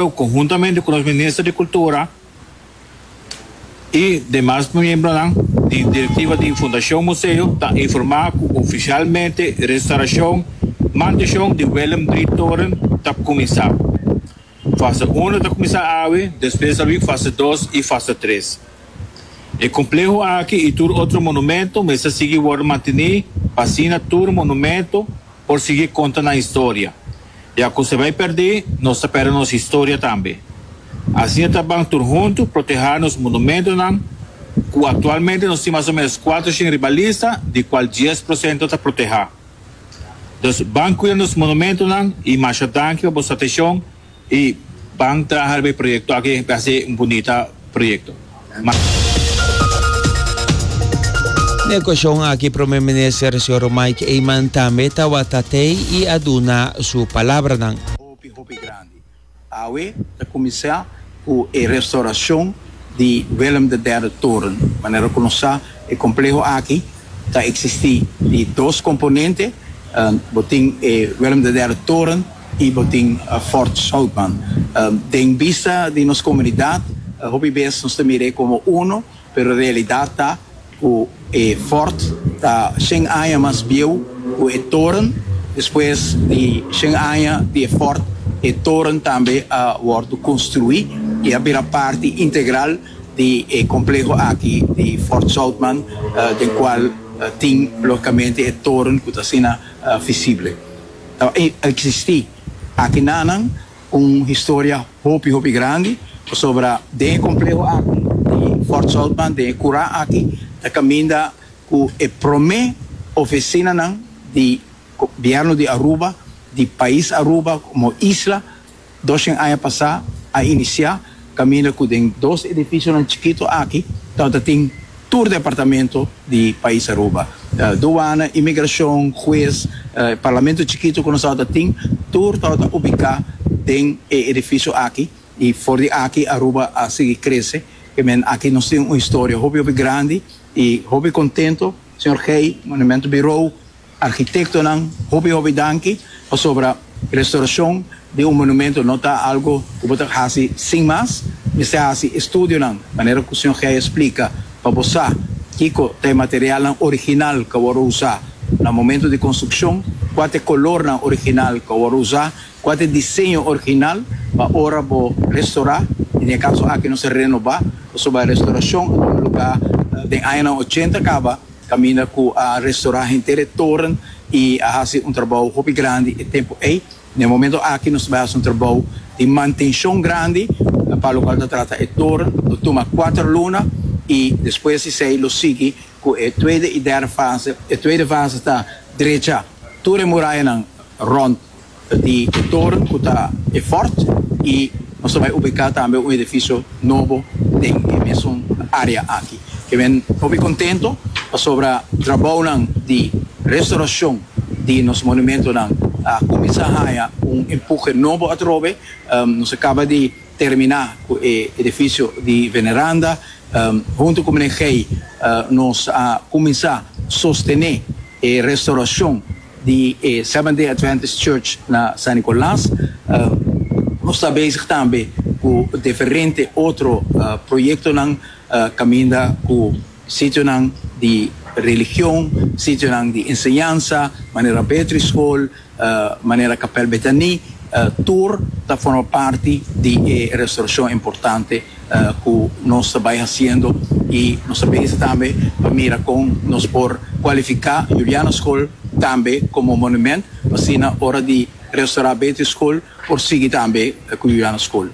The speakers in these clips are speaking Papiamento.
Pero conhuntamente cu nos Minister di Cultura y demas miembronan di Directiva di Fundacion Museo ta informa cu oficialmente restauracion, mantencion di Willem Drie Toren ta cuminsa. Fase uno ta cuminsa awe, despues ta bin fase dos y fase tres. E compleho aki y tur otro monumento mester sigui worde manteni p'asina tur monumento por sigui conta nan historia. Ya cu se bay perdi, nos ta perde nos historia tambe. Asina ta ban tur hunto proteha nos monumentonan, cu actualmente nos tin mas o menos cuatro shen riba lista, di cual dies procento ta proteha. Dus ban cuida nos monumentonan y masha danki pa bo satecion y ban traha riba e proyecto aki, e haci un bunita. proyekto. Na e okashon aki Prome Minister Señor Mike Eman tambe tawata tei i a duna su palabranan. Hopi hopi grandi. Awe ta kuminsá ku e restorashon di Willem de Derde Toren. Manera ku nos sa e kompleho aki ta eksistí di dos komponente. Bo tin e Willem de Derde Toren. y bo tin Fort Southman den bista di nos comunidad hopi bes nos ta mirae como uno pero realidad ta cu e Fort ta shen aña mas bieu cu e toren despues di shen aña di e Fort e toren tambe a wordo construi y a bira parti integral di e compleho aki di Fort Southman den cual tin logicamente e toren cu ta asina visible. ta eksistí. Aki nanan un historia hopi hopi grandi pasobra den e kompleho aki di Fort Saltman, den e kura aki, ta kaminda ku e promé ofesinanan di Gobierno di Aruba, di pais Aruba komo isla. Doshen aña pasá a inisiá kaminda ku den dos edifisionan chikitu aki tabata tin tur departamento di pais Aruba. Duana, imigrashon, hues, parlamento chikitu ku nos tabata tin, tur tabata ubiká den e edifisio aki i for di aki Aruba a sigui krese. Ke men aki nos tin un historia hopi hopi grandi i hopi kontento, señor Gey, Monumentu Birou. Arkitektonan hopi hopi danki pasobra restaurashon di un monumento no ta algu ku bo ta hasi sin mas. Mester hasi estudionan, manera ku señor Gey a splika, pa bo sa kiko ta e materialnan original ku a wòrdu usá na momentu di konstrukshon, kua ta e kolornan original ku a wòrdu usá, kua ta e diseño original pa ora bo restaurá. I na e kaso aki nos a renobá pasobra restaurashon a tuma lugá den añanan ochenta kaba. Caminda cu a restora henter e toren y a haci un trabou hopi grandi e tempo ey. Na e momento aki nos bai haci un trabou di mantencion grandi pa locual ta trata e toren. Lo tuma cuater luna y despues di esey lo sigui cu e tuede y derde fase. E tuede fase ta drecha tur e murayanan rond. Ta tin e toren cu ta e fort y nos ta bay ubica tambe un edificio nobo den e mesun area aki. Ke men hopi contento pasobra trabounan di restauracion di nos monumentonan a cuminsa haya un empuje nobo atrobe. Nos a caba di. terminá ku e edifisio di Veneranda. Huntu ku Mene Gey nos a kuminsá sostené e restaurashon di e Seventh Day Adventist Church na San Nicolas. Nos ta bezig tambe ku diferente otro proyektonan kaminda ku sitionan di religion, sitionan di enseñansa, manera Beatrice School, manera kapèl Betani tur ta forma parti di e restaurashon importante ku nos ta bai hasiendo i nos ta bisa tambe pa mira kon nos por kualifiká Juliana Skol tambe komo monument pa asina ora di restaurá Beatrice Skol por sigui tambe ku Juliana Skol.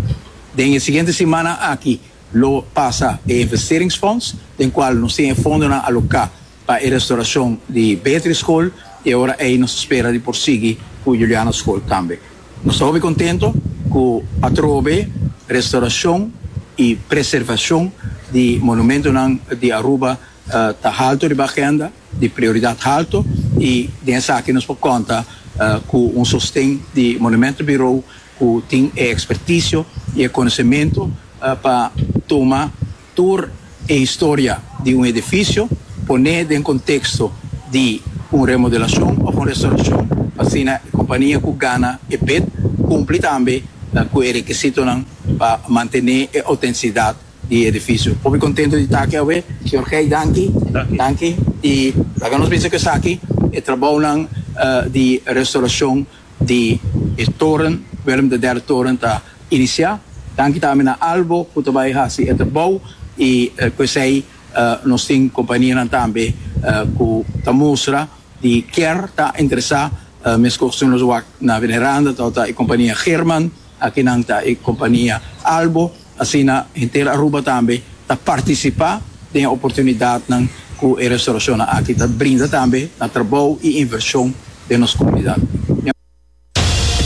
Den e siguiente simana aki lo pasa e investeringsfonds den kual nos tin e fondonan aloká. pa e restauracion di Beatrice School y ahora ey nos ta spera di por sigui cu Juliana School tambe. Nos ta hopi contento cu atrobe restauracion y preservacion di monumentonan di Aruba ta halto riba agenda, di prioridad halto y den esaki nos por conta cu un sosten di Monumento Bureau cu tin e experticio y e conocemento pa tuma Tur e historia di un edifisio poné den konteksto di un remodelashon òf un restaurashon pa asina e kompania ku gana e bid kumpli tambe ku e rekisitonan pa mantené e outentisidat di e edifisio. Hopi kontento di ta aki awe. Señor Gey, danki. Danki. I laga nos bisa ku esaki e trabounan di restaurashon di e toren, Willem de Derde Toren, ta inicia. Danki tambe na Albo cu ta bay haci e trabao y cu esey nos tin companianan tambe cu ta mustra di kier ta ingresa mescos cu nos wak na Veneranda, ta e compania German, aki nan ta e compania Albo. Asina henter Aruba tambe ta partisipá den e oportunidatnan ku e restaurashonnan aki ta brinda tambe na trabou i invershon den nos komunidat.